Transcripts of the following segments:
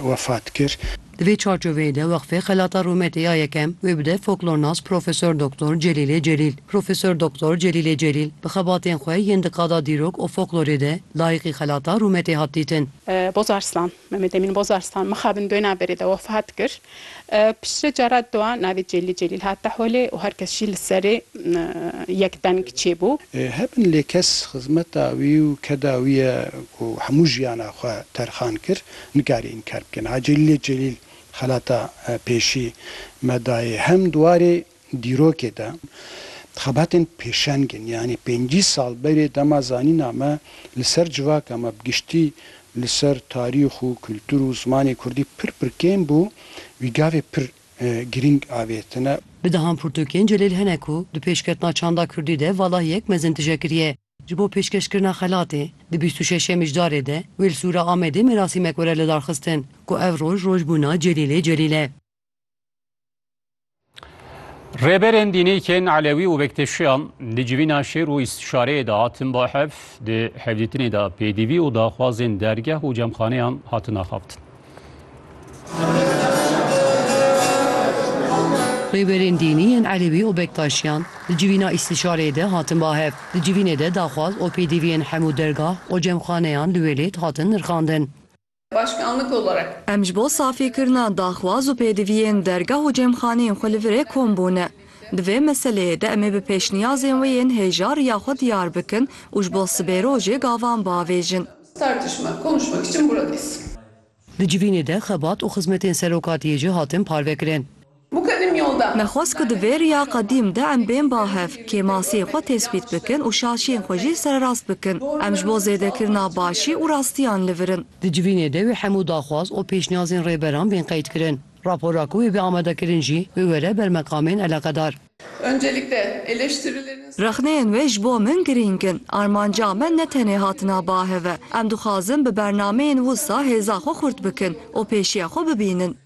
wefat kir. Di vê çarçoveyê de Weqfê Xelata Rûmetê ya Yekem wê bide Foklornas Profesor Doktor Celîlê Celîl. Profesor Doktor Celîlê Celîl bi xebatên xwe yên di qada dîrok û foklorê de layiqî xelata rûmetê hat dîtin. Bozarslan, Mehmet Emîn Bozarslan mixabin doyna berê de wefat kir. Piştre cara dua navê Celîl Celîl hate holê û her kes jî li serê yek deng çêbû. Hebin lê kes xizmeta wî û keda wî ye ku hemû jiyana xwe terxan kir nikare înkar bike. Niha Celîlê Celîl xelata pêşî me dayê hem di warê Dîrokê de xebatên pêşeng in, yanî pêncî sal berê dema zanîna me li ser civaka me bi giştî li ser tarîx û kultur û zimanê kurdî pir pir kêm bû, wî gavê pir girîng avêtine. Bi dehan pirtûkên Celêl hene ku di pêşketina çanda kurdî de valahiyek mezin tije kiriye. Ji bo pêşkeşkirina xelatê, di bîst û şeş yemî ji darê de wê li Sûra Amedê merasîmek were lidarxistin ku ev roj rojbûna Celîlê Celîl e. Rêberên dînîkên Elewî û Bekteşiyan di civîna şêr û îstîşareyê de hatin ba hev di hevdîtinê de pêdivî û daxwazên dergeh û cemxaneyan hatin axaftin. Rêberên dînî yên Elewî û Bektaşiyan di civîna îstîşareyê de hatin ba hev. Di civînê de daxwaz û pêdiviyên hemû dergah û cemxaneyan li wê lêd hatin nirxandin. Başkanlık olarak. Em ji bo safîkirina daxwaz û pêdiviyên dergah û cêmxaneyên xwe li vir ê kom bûne. Di vê meseleyê de em ê bi pêşniyazên wê yên hêja riya xwe diyar bikin û ji bo sibê rojê gavan biavêjin. Tartışma, konuşmak için buradayız. Di civînê de xebat û xizmetên serokatiyê jî hatin parvekirin. Mukedim yolda. Me xwest ku di vê riya qedîm de em bên ba hev, kêmasiyên xwe tespît bikin û şaşiyên xwe jî sererast bikin. Em ji bo zêdekirina başî û rastiyan li vir in. Di civînê de wê hemû daxwaz û pêşniyazên rêberan bên qeydkirin. Rapora ku wê bê amadekirin jî biwere ber meqamên eleqedar. Öncelikle, eleştirilerin. Rexneyên wê ji bo min girîng in. Armanca me ne tenê hatina ba hev e. Em dixwazin bi bernameyên wisa hêza xwe xurt bikin û pêşiya xwe bibînin.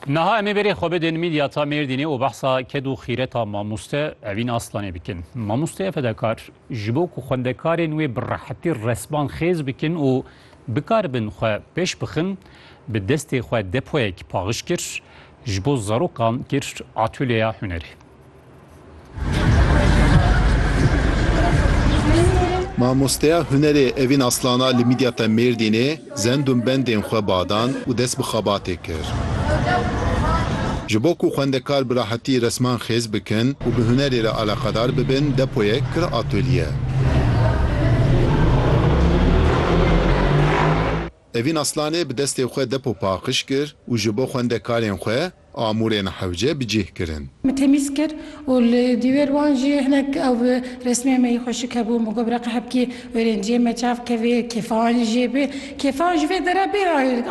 Naha emê verê xwe bidin mîdyata Mêrdînê û behsa ked û xîreta mamoste Evîn Aslanê bikin. Mamosteya fedakar ji bo ku xwendekarên wê bi rehetî resman xêz bikin û bikaribin xwe pêş bixin bi destê xwe depoyek paxij kir, ji bo zarokan kir atölyeya hunerê. Mamosteya hunerê Evîn Aslana li Midyata Mêrdînê zendûn bendên xwe badan û dest bi xebatê kir. Ji bo ku xwendekar bi rahetî resman xêz bikin û bi hunerê re alaqedar bibin depoyek kir atolye. Evîn Aslanê bi destê xwe depo paqij kir û ji bo xwendekarên xwe amûrên hewce bi cih kirin. Me temîz kir û li dîwêr wan jî hinek ew resmên me yê xweşik hebû. Me got bi reqa hevkî wêrênciyên me çav keve, kêfan jê be. Kêfan ji vê dera bê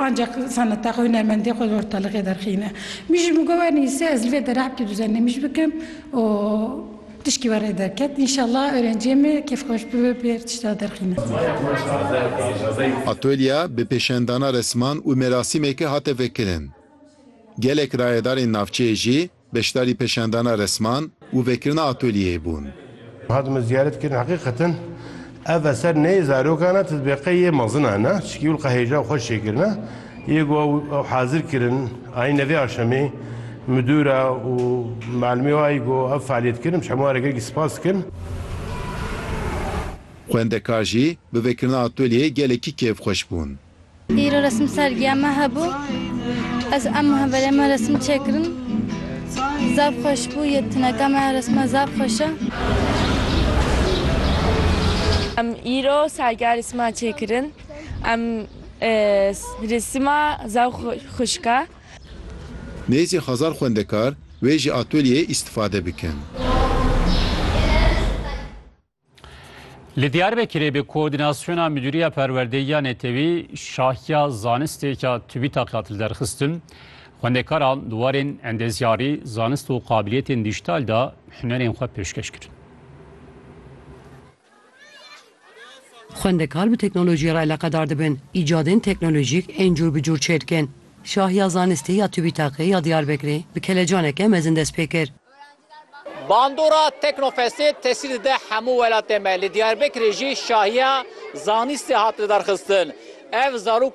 ancak seneta xwe, hunermendiyê xwe li ortalıqê derxîne. Min jî bi got wernivîse ez li vê dera hevkî duzendemîj bikim û. Tişkî were derket înşallah orenciyê me kêfxweş bibe bi her tişta derxîne. Atölya bi pêşendana resman û merasîmeke hate vekirin. Gelek rayedarên navçeyê jî beşdarî pêşendana resman û vekirina atölyeyê bûn. Hatime ziyaret kirin heqîqeten Ev eser ne yê zarokan e, titbîqê yê mezinan e, çikî wil qehêja û xwe çêkirine yê ku ew hazir kirin. Ayîne vê axşemê midûr e û melimê wayî ku ev fealiyet kirin, em ji hemû are gelekî spas dikin. Xwendekar jî bi vekirina atölyeyê gelekî kêfxweş bûn. Îro resim sergiya me hebû. Ez û hemverê me resim çêkirin. Zaf xweş bû. Yê tuneka me ya resma zaf xweş e. Em îro sergiya resma çêkirin. Em resima zaf xweşik e. Nêzî hezar xwendekar wê ji atelyeyê îstifade bikin. Li Diyarbekirê bi koordînasyona Midûriya Perwerdeyî ya Netewî şahiya zanistêka tubî taqiya til derxistin. Xwendekaran di warên endezyarî, zanist û qabiliyetên dîjîtal de hunerên xwe pêşkeş kirin. Xwendekar bi teknolojiyê re eleqedar dibin, îcadên teknolojîk ên cûr bi cûr çêdikin. Şahiya zanistê ya tubî taqiya Diyarbekirê bi kelecaneke mezin dest pê kir. Bandora Teknofestê tesîr dide hemû welatê me. Li Diyarbekirê jî şahiya zanîstê hat lidarxistin. Ev zarokê